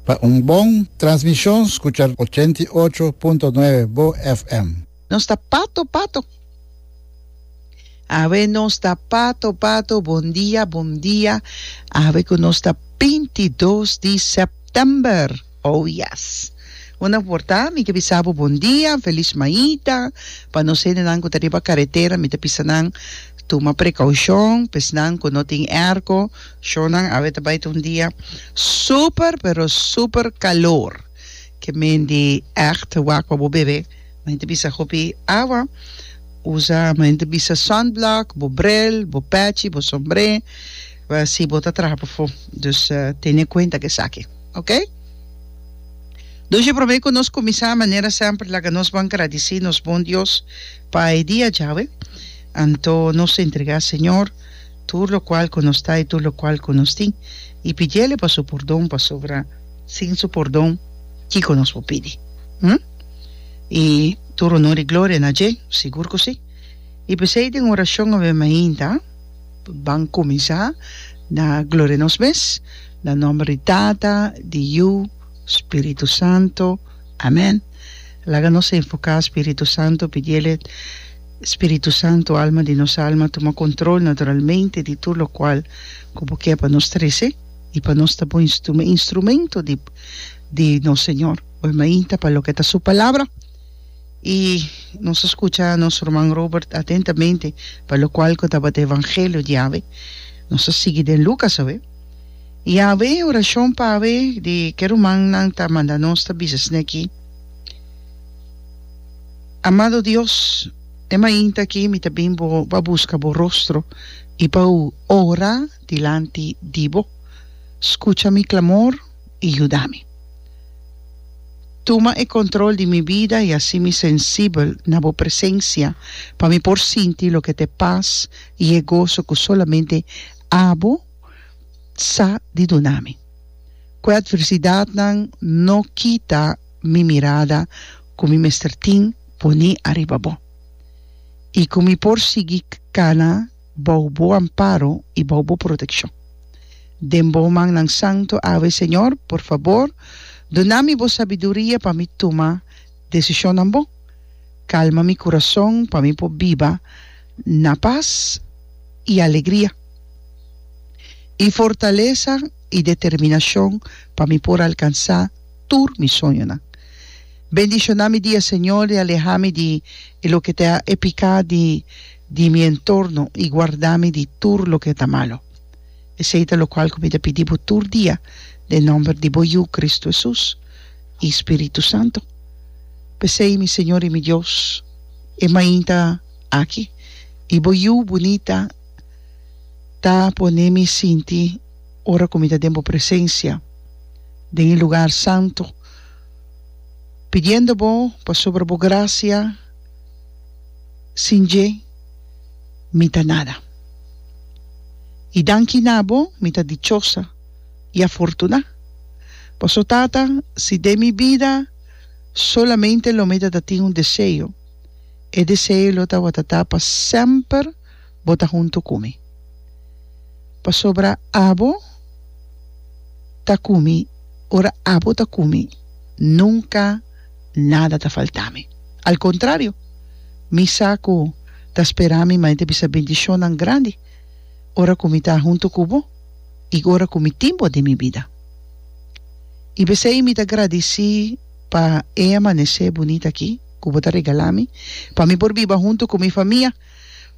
Pa un bon transmishon skucha ochenta i ocho punto nuebe bo FM. Nos ta pato pato. Awe nos ta pato pato bon dia bon dia awe ku nos ta binti dos di sèptèmber. Oh yes. Bo na por ta, mi ke bisa bo bon dia, felis maita, pa nos hendenan ku ta riba karetera mi ta bisa nan tuma prekoushon, pesnan ku no tin airco shonnan awe ta bai ta un dia super pero super kalor ke men di ègt wak pa bo bebe, men ta bisa hopi awa, usa men ta bisa sunblock, bo bril, bo pèchi, bo sombré, si bo ta traha pafó, dus tene kuenta ku esaki. Ok. Duje promé ku nos kuminsá manera semper laga nos bon gradisí nos bon Dios pa e dia dje awe. Anto nos ta entregá Señor tur lokual ku nos ta i tur lokual ku nos tin i pidiele pa su pordon pasobra sin su pordon kiko nos por pidi? Hm? I tur onor i gloria na dje, sigur ku si. I p'esei den orashon awe mainta. Ban cuminsa na gloria nos mes, na nomber di Tata, di Yu, Spiritu Santo. Amen. Laga nos a invoca Spiritu Santo, pidiel e, Spiritu Santo, Alma di nos alma, tuma control naturalmente di tur locual cu bo kier pa nos trece y pa nos ta bo instrumento di nos Señor. Bo a mainta pa loke ta su Palabra. I nos a skucha nos ruman Robert atentamente pa lokual ku tabata evangelio di Yahweh. Nos a sigui den Lukas awe. I awe orashon pa awe di ke rumannan ta manda nos ta bisa esei aki, Amado Dios, e mainta aki mi ta bin bo pa buska bo rostro i pa ora dilanti di bo. Skucha mi klamor. i yuda mi. Tuma e control di mi bida i haci mi sensibel na bo presencia pa mi por sinti loke ta e paz i e gozo cu solamente Abo sa di duna mi. Cu e adversidadnan no kita mi mirada cu mi mester tin poni ariba bo i cu mi por sigui cana bou bo amparo i bou bo protekshon. Den bo mannan santu awe, Señor, por fabor, duna mi bo sabiduria pa mi tuma desishonnan bon. Kalma mi kurason pa mi por biba na pas i alegria, i fortalesa i determinashon pa mi por alkansá tur mi soñonan. Bendishoná mi dia, Señor, i alehá mi di e loke ta e piká di. di mi entorno i guardá mi di tur loke ta malu. Esei ta lokual ku mi ta pidi bo tur dia den nòmber di bo Yu, Kristu Hesus, i Spiritu Santu. P'esei, mi Señor i mi Dios, e mainta aki di bo Yu bunita ta pone mi sinti ora ku mi ta den bo presensia den e lugar santu, pidiendo bo pasobra bo grasia, Sin dje mi ta nada. I danki na bo mi ta dichosa i afortuná. Paso, Tata, si den mi bida solamente lo mi ta ta tin un deseo, e deseo lo tabatin ta pa semper bo ta huntu ku mi, pasobra abo ta ku mi, ora abo ta ku mi nunka nada ta faltá mi. Al kontrario, mi sa ku ta spera mi mei ta bisa bendishonnan grandi ora ku mi ta huntu ku bo i ora ku mi tin bo den mi bida. I p'esei mi ta gradisí pa e amanesé bunita akí ku bo ta regalá mi, pa mi por biba huntu ku mi famia.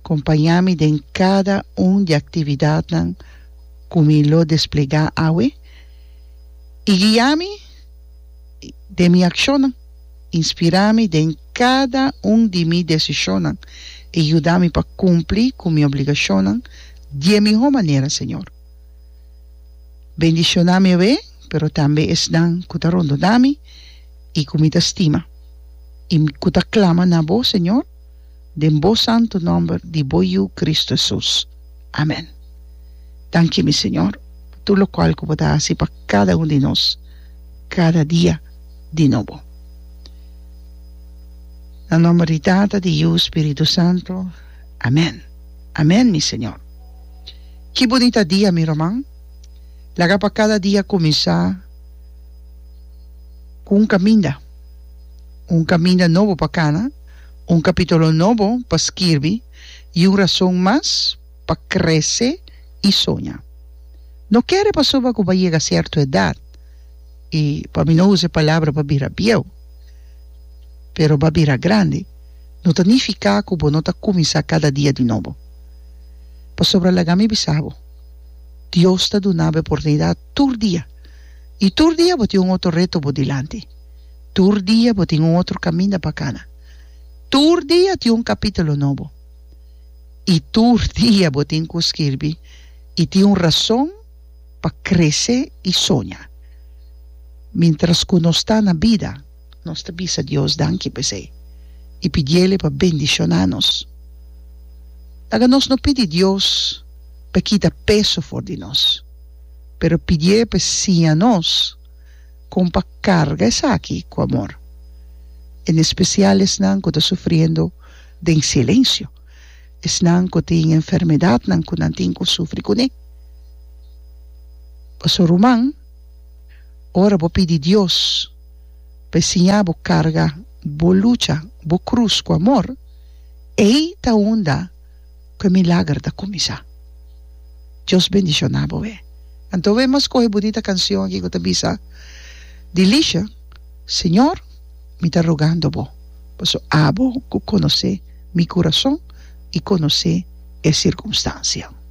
Kompañá mi den kada un di aktividatnan ku mi lo desplegá awe i guia mi den mi akshonnan. Inspirá mi den kada un di mi desishonnan i yuda mi pa kumpli ku mi obligashonnan di e mihó manera, Señor. Bendishoná mi awe, pero tambe esnan ku ta rondona mi i ku mi ta stima i ku ta klama na Bo, Señor. den Bo santu nòmber di Bo Yu Kristu Hesus. Amèn. Danki, mi Señor, pa tur lokual ku Bo ta hasi pa kada un di nos kada dia di nobo. Na nòmber di Tata, di Yu, Spiritu Santu. Amèn. Amèn, mi Señor. Ki bunita dia, mi ruman! Laga pa kada dia kuminsá ku un kaminda, un kaminda nobo pa kana. Un kapítulo nobo pa skirbi i un rason mas pa krese i soña. No kere pasobra ku bo a yega sierto edat, i pa mi no usa e palabra bo a bira bieu, pero bo a bira grandi, no ta nifiká ku bo no ta kuminsá kada dia di nobo. Pasobra laga mi bisa bo, Dios ta duna bo e oportunidat tur dia, i tur dia bo tin un otro reto bo dilanti. Tur dia bo tin un otro caminda pa cana. Tur dia tin un capitulo nobo. Y tur dia bo tin cu skirbi y tin un razon pa crece y soña. Mintras cu nos ta na bida nos ta bisa Dios danki pa esey y pidiele pa bendiciona nos. Laga nos no pidi Dios pa e kita peso for di nos, pero pidié pa e siña nos. kon pa karga esaki ku amor, en espesial esnan ku ta sufriendo den silensio, esnan ku tin enfermedatnan ku nan tin ku sufri kuné. Pasobra ruman, ora bo pidi Dios pa e siña bo karga bo lucha, bo krus ku amor, ei ta unda. ku e milager ta kuminsá. Dios bendishoná boe. Anto boe mas kohe bunita kansion aki ku ta bisa Dilisha, Señor, mi ta rogando Bo, paso abo ku konosé mi kurason i konosé e sirkunstansia.